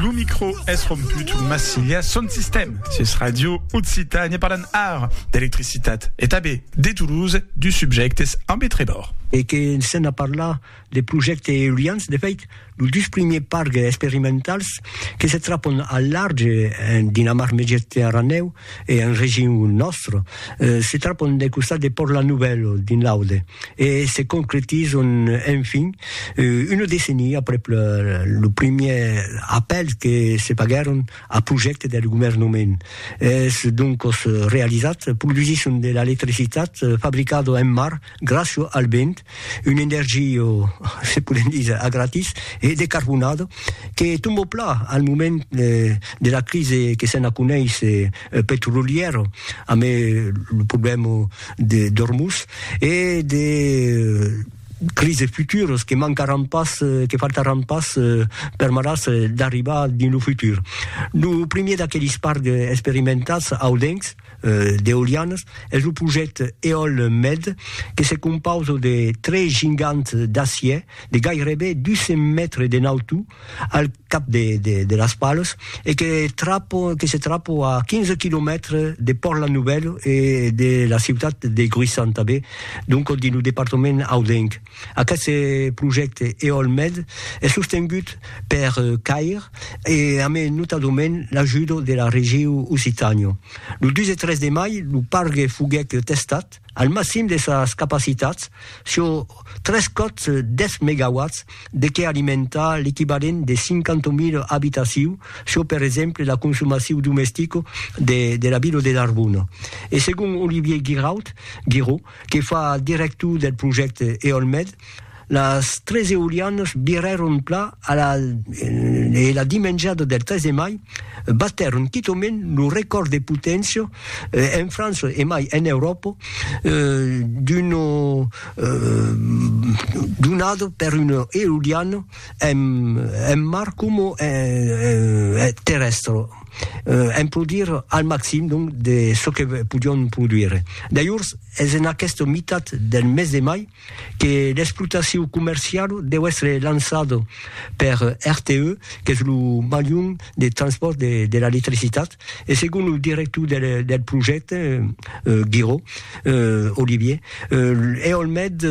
Lo micro es romput, mas silia son sistèm. Sus Radio Occitània parlan ara d'electricitat e tanben de Toulouse, dus subjèctes ambe Trébor. E que s'en a parlat de projèctes eolians, de fèit, los dus primièrs parcs experimentals que se trapon al large dins la mar Mediterranèu e en region nòstre, se trapon del costat de Pòrt La Nouvelle, dins l'Aude, e se concretizon enfin una decenia aprèp lo primièr apèl que se faguèron a projècte del governament. Es doncos realizat, produsisson de l'electricitat fabricada en mar gràcia al vent, Una energia, se podem díser, a gratis e decarbonada que tomba plan al moment de la crisi que se'n aconeish petrolièra amb lo problèma d'Ormuz e de crisis futuras que mancaràn pas, que faltaràn pas permetàs d'arribar dins lo futur. Lo primièr d'aquelis parcs experimentats audencs, d'eolianas es lo projècte Eolmed que se compausa de tres gigants d'acièr de gairebe 200 mètres de nautor al cap de las palas e que se trapa a 15 quilomètres de Pòrt-la Novèla e de la ciutat de Gruissan tanben, donc dins lo departament audenc. Aqueste projècte EOLMed es sostengut per CAIR e a mai notadament l'ajudo de la Regiu Occitània. Lo 2 e 3 de mai lo pargue foguèt testat al maxim de sas capacitats sur tres còps 10 megawatts de qué alimentar l'equivalent de 50.000 abitaciu sur per exemple la consomaciu domestica de la vila de Narbona. E segon Olivier Guiraud, Guiraud, que fa director del projècte Eolmed, las tres eolianas virèron pla a la e la dimenjada del 3 de mai batèron quitament lo recòrd de poténcia en França e mai en Euròpa d'una donada per una eoliana Èm en mar coma en terrèstre, èm produire al maxim donc de çò que podion produire. Dajors es en aquesta mitat del mes de mai que l'explotacion comerciala deu èstre lançada per RTE, qu'es lo malhum de transpòrt de l'electricitat, e segon lo director del projècte, Giraud, Olivier, eolmed,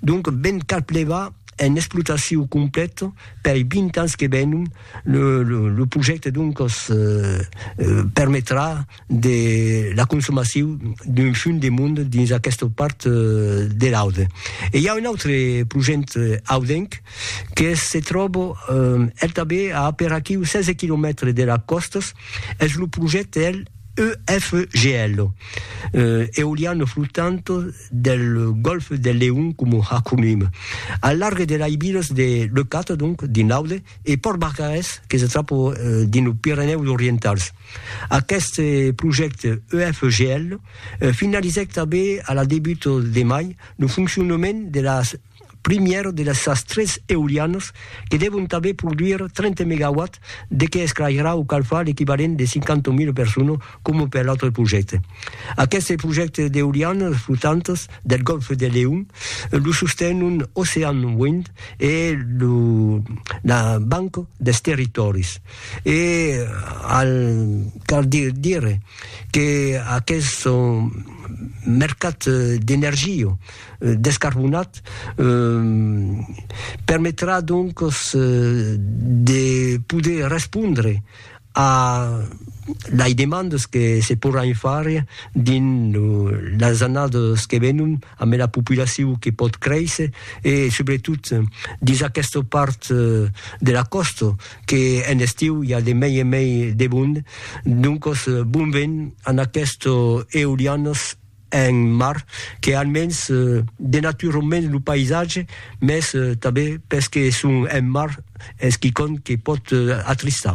donc ben cal plevar, en explotacion complet pei 20 ans que venon, le, le, le projècte doncos permetrà de la consomacion d'un fum de mond dins aquesta part de l'Aude. E i a un autre projècte audenc que se tròba el tanben a aperaquiu 16 quilomètres de las còstas, es lo projècte el EFGL, eoliano flottant, del golf del Leon coma acronim. Al larg de l'Aibires de Leucate, donc, dins l'Aude, e Pòrt Barcarès, que se tròba dins los Pirenèus Orientals. Aqueste projècte EFGL finalizèc tanben a la debut de mai lo foncionament de la primièr de las sas tres eolianas que devon tanben produir 30 megawatts de que esclairarà o calfar l'equivalent de 50.000 personas coma per l'autre projècte. Aqueste projècte d'eolianas flotantas del Gòlf de Leon lo sostenon Ocean Wind e la Banca dels Territòris e al cal dire que aqueste mercat d'energia euh, descarbonat euh, permetrà donc euh, de poder respondre a les demandes que se pourran far dins lo, les anades que venon amb la populacion que pot créisser e sobretot dins aquesta part euh, de la costa que en estiu hi ha de mei e mei de bond donc bon ven en aquestes eolianes un mar que almens denatura un mens lo païsatge, mès tanben pes que es un mar es quicòm que pòt atristar.